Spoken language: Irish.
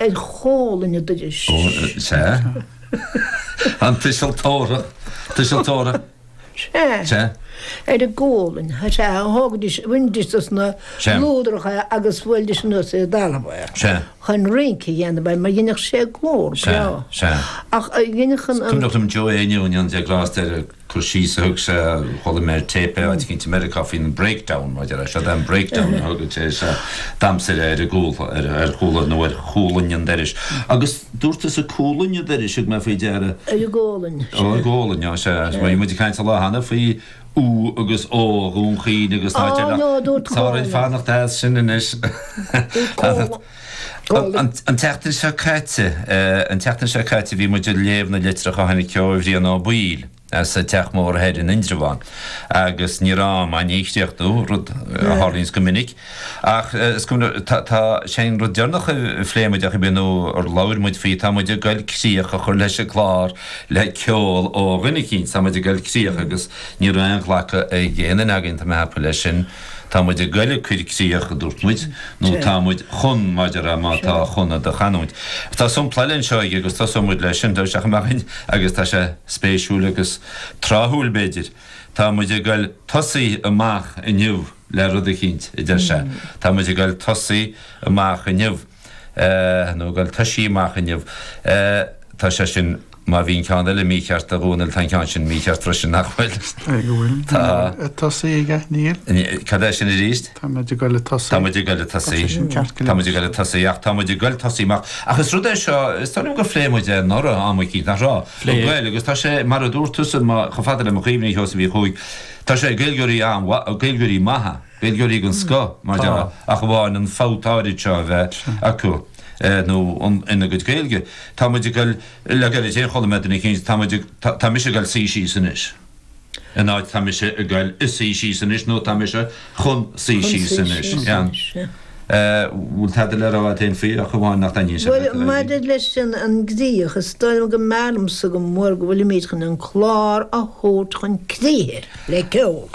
ar chomhlainn an dorais. Ó, sea. An tuiseal tabharthach, tuiseal tabharthach. Sea. Sea. Ar an gcomhlainn, sea, thógaidís, bhainidís dos na Sea. lúdracha agus bhuailidís anuas ar an dtalamh é. Sea. Chun rince a dhéanamh air, mar dheineadh sé glór Sea, breá. sea. Ach a dheineadh an- an- Cuimhneach liom Joe Éinniú go ndéana Dia grásta air cur síos a thug sé, chuala mé ar téip é áit eicínt i Meiriceá faoin breakdown, mar deir sé, den breakdown a thug sé sa damhsa ar an gcomhla, ar chomhla nó ar chomhlainn an dorais. Agus dúirt tusa comhlainn an dorais, thug mé faoi deara. Ar an gcomhlainn. Ó, ar an gcomhlainn, ó, sea. Bhí muid ag caint an lá cheana faoi U agus O a Dhún Chaoin agus tá deartháir fanacht as sin anois. An tseachtain seo caite, an tseachtain seo caite bhí muid ag léamh na litreach a tháinig ó Bhrian Ó Baoill as an Teach Mór Thoir in Indreabhán agus ní raibh am ann é a chríochnú, rud a tharlaíonns go minic. Ach is cuma, tá, sé an rud deireanach a phléigh muid, ach ar ndóigh, nó ar labhair muid faoi, tá muid ag goil críoch a chur leis an gclár le ceol ó dhuine eicínt, tá muid ag goil críoch agus ní raibh aon ghlacadh ag éinne againn, tá mé ag ceapadh leis sin. Tá muid ag goil ag cur críoch, a dúirt muid, nó tá muid chun maidir le má tá chun i do chanúint. Tá sompla eile anseo aige agus tosóidh muid leis sin, deir sé, agus tá sé spéisiúil agus tráthúil, b'fhéidir. Tá muid ag goil tosaí amach inniu le rud eicínt, a deir sé. Tá muid ag goil tosaí amach inniu. nó goil tosaí amach inniu. Tá sé sin, má bhí an ceann eile mícheart a Dhónaill, tá an ceann sin mícheart freisin, nach bhfuil? Ag a bhfuil. Tá. Ag tosaí aige, níl? Cad é sin arís? Tá muid ag dul ag tosaí. Tá muid ag dul ag tosaí. Tá sé sin ceart go leor. Tá muid ag dul ag tosaí, ach tá muid ag dul tosaí amach. Ach is rud é seo, is dóigh liom gur phléigh muid é anuraidh am eicínt, nach raibh? Phléigh. An Gaeilg, agus tá sé, mar a dúirt tusa, chomh fada le mo chuimhne, a Sheosaimh Uí Chuaig, tá sé ag Gaeilgeoirí an-mhaith, ag Gaeilgeoirí maithe. Gaeilgeoirí den scoth, mar dhea, ach amháin an fabht áirid seo a bheith acu nó ina gcuid Gaeilge. Tá muid ag dul, le gairid féin chuala mé duine éicínt, tá muid ag, tá mise ag dul suí síos anois, in áit tá mise ag dul ag suí síos anois nó tá mise chun suí síos anois. Bhfuil tada le rá agat féin faoi ach amháin nach dtaitníonn sé leat? Bhuel, maidir leis an gcríoch, is dóigh liom go mb'fhearr liomsa go mór go bhfuilimid chun an clár a thabhairt chun críche le ceol.